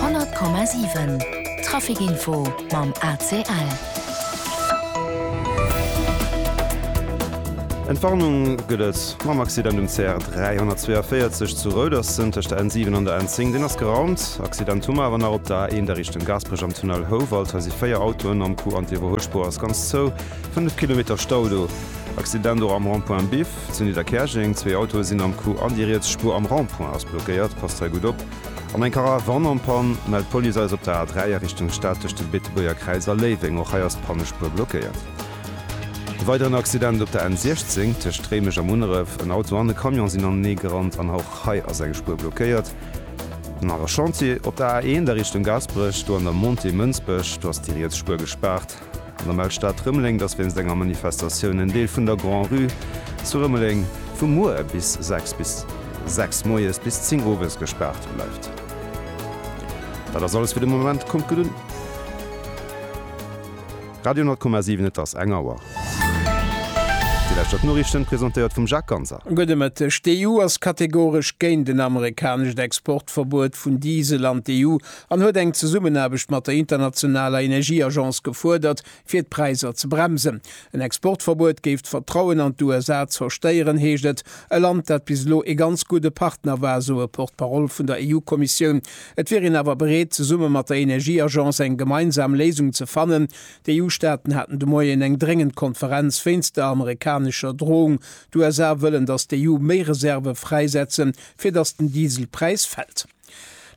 100,7 Trafic Info mam ACL. Entwarnung gëtt et mam Accident um CR 342 zu Rouderssen tëscht der N7 an der N10. Deen ass geraumt. Accident hu mer awer nach op der A1 a Richtung Gaasperech am Tunnel Houwald. Hei si véier Autoen am Coup an d'Iwwerhuelspuer ass ganz zou. Fënnef Kilometer Stau do. Accident och am Rond-point Biff. Zu Nidderkäerjeng, Zwee Autoe sinn am Coup an déi riets Spuer am Rond-point ass blockéiert, passt hei gutt op. An eng Karavan am Pann, mellt d'Police eis op der A 3 a Richtung Stad tëscht dem Beetebuerger Kräiz a Léiweng. Och hei ass d'Pannespuer blockéiert. E weideren Accident op der N 16 tëscht Réimech a Munneref, en Auto an e Camion sinn anenee gerannt an och hei ass eng Spuer blockéiert. Nach e Chantier op der A 1 a Richtung Gaasperech, do an der Montée Mënsbech, do ass déi riets Spuer gespaart. An der Mell-Stad Rëmeleng, dass wéinst enger Manifestatioun en Deel vun der Grand Rue zu Rëmeleng vu muer bis 6 bis 6 moies bis 10 owes gespaart bleift. Dat ass alles fir de Moment. Kommt gutt un. Radio 10,7 Et ass eng Auer. Déi leschter d'Noriichten, presentéiert vum Jacques Ganser. Gudde Mëtteg. D'EU ass kategoresch géint en amerikanescht Exportverbuet vun Diesel an d'EU an huet eng Zesummenaarbecht mat der internationaler Energieagence gefuerdert, fir d'Präisser ze bremsen. En Exportverbuet géif d'Vertrauen an d'USA zerstéieren, heescht et. E Land, dat bis elo ee ganz gudde Partner war, sou e Porte-parole vun der EU-Kommissioun. Et wier een awer bereet, zesumme mat der Energieagence eng gemeinsam Léisung ze fannen. D'EU-Staaten haten de Moien eng dréngend Konferenz wéinst der amerikanescher Drohung. D'USA wëllen, datt d'EU méi Reserve fräisetzen, fir datt den Dieselpräis fält.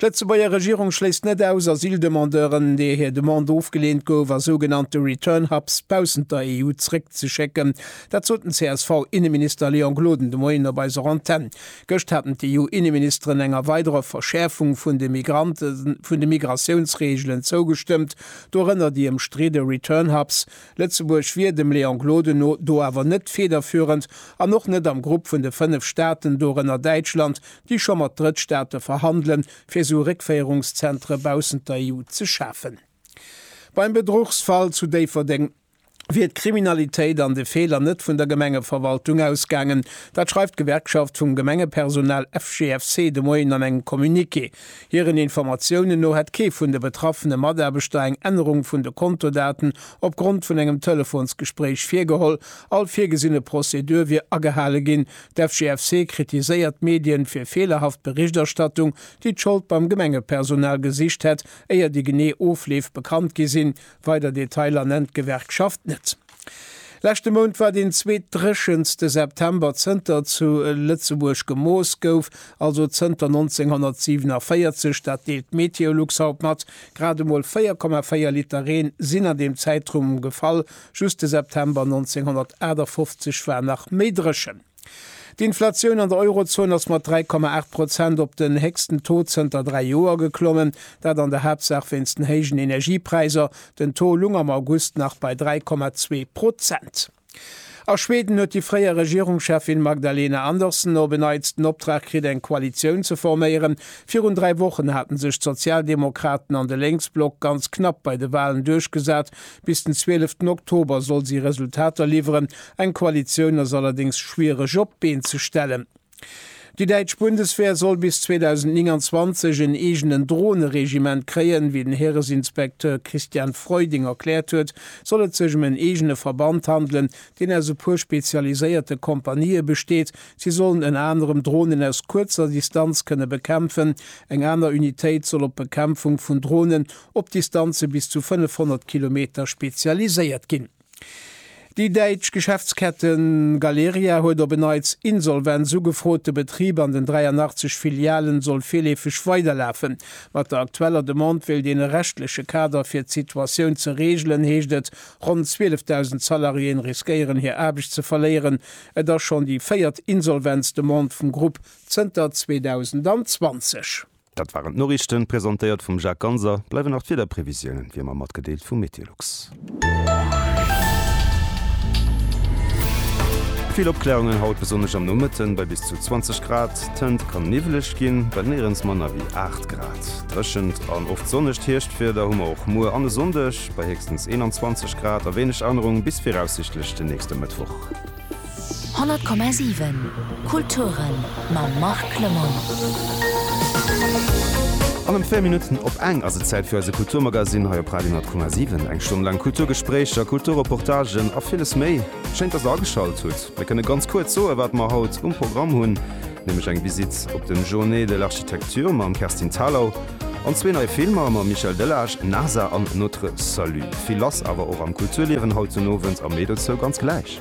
D'Lëtzebuerger Regierung schléisst net aus, Asyldemandeuren, deer hir Demande ofgeleent gouf, a sougenannte Return-Hubs baussent der EU zréckzeschécken. Dat sot den CSV-Inneminister Léon Gloden de Moien op eiser Antenn. Gëscht haten d'EU-Inneministeren enger weiderer Verschäerfung vun de Migrante vun de Migratiounsreegelen zougestëmmt, dorënner déi ëmstridde Return-Hubs. Lëtzebuerg wier dem Léon Gloden no do awer net federführend an och net am Grupp vun de fënnef Staaten, dorënner Däitschland, déi scho mat Drëttstaate verhandelen, fir esou Réckféierungszentre baussent der EU ze schafen. Beim Bedruchsfall zu Déifferdeng wier d'Kriminalitéit an de Feeler net vun der Gemengeverwaltung ausgaangen. Dat schreift d'Gewerkschaft vum Gemengepersonal FGFC de Moien an engem Communiqué. Hiren Informatiounen no hätt kee vun de betraffene Mataarbechter eng Ännerung vun de Kontodaten opgrond vun engem Telefonsgespréich virgeholl. All virgesinne Prozedur wier agehale ginn, D'FGFC kritiséiert d'Medien fir feelerhaft Berichterstattung, déi d'Schold beim Gemengepersonal gesicht hätt, éier déi genee Ofleef bekannt gi sinn. Weider Detailer nennt d'Gewerkschaft net. Leschte Mount war deen zweetdréchenste September zënter zu Lëtzebuerg gemooss gouf, also zënter 1947. Dat deelt Meteolux haut mat. Grad emol 4,4 Liter Reen sinn an deem Zäitraum gefall, Just de September 1958 war nach méi dréchen. D'Inflatioun an der Eurozon ass mat 3,8 Prozent op den héchsten Taux zënter dräi Joer geklommen, dat an der Haaptsaach wéinst den héijen Energiepräiser. Den Taux lung am August nach bei 3,2 Prozent. A Schweden huet déi fréier Regierungscheffin Magdalena Andersson op en Neits den Optrag kritt, eng Koalitioun ze forméieren. Virun dräi Wochen haten sech d'Sozialdemokraten an de Lénksblock ganz knapp bei de Walen duerchgesat, Bis den zwieleften Oktober soll si Resultater liwweren. Eng Koalitioun ass allerdéngs schwiereg op d'Been ze stellen. Déi däitsch Bundeswehr soll bis 2029 en eegenen Droneregiment kréien. Wéi den Häresinspekteur Christian Freuding erkläert huet, soll et sech ëm en eegene Verband handelen, deen aus e puer spezialiséierte Kompanië besteet. Si sollen ënner anerem Dronen aus kuerzer Distanz kënne bekämpfen. Eng aner Unitéit soll op d'Bekämpfung vun Dronen op Distanze bis zu 500 Kilometer spezialiséiert ginn. Déi däitsch Geschäftskette Galeria huet op en Neits Insolvenz ugefrot. De Betrib an den 83 Filialen soll virleefeg weiderlafen. Mat der aktueller Demande wéilt een e rechtleche Kader fir d'Situatioun ze reegelen, heescht et. Ronn 12.000 Salariéen riskéieren hir Aarbecht ze verléieren. Et ass schonn déi véiert Insolvenzdemande vum Grupp zënter 2020. Dat waren d'Noriichten, presentéiert vum Jacques Ganser. Bleiwen nach d'Wiederprevisiounen, wéi ëmmer matgedeelt vum Meteolux. Vill Opkläerungen haut, besonnesch am Nomëtten bei bis zu 20 Grad. D'Hënt kann niwweleg ginn, well néierens manner wéi 8 Grad. Dréchent an oft sonnegt Hierschtwieder hu mer och muer an e Sonndeg, bei héchstens 21 Grad a wéineg Ännerung bis viraussiichtlech den nächste Mëttwoch. 100,7 Kulturen mam Marc Lemoine. An em puer Minutten op eng ass et Zäit fir eise Kulturmagasinn hei op Radio 10,7. Eng Stonn laang Kulturgespréicher, Kulturreportagen a villes méi. Schéin, dass der ageschalt hutt. Mir kënne ganz kuerz soen, wat mer haut um Programm hunn, nämlech eng Visitt op dem Journée de l'Architecture mam Kerstin Thalau, An zwee nei Filmer mam Michel Delage, Nasa an Notre Salut. Vill lass awer och am Kulturliewen haut den Owend, am Meedelszou ganz gläich.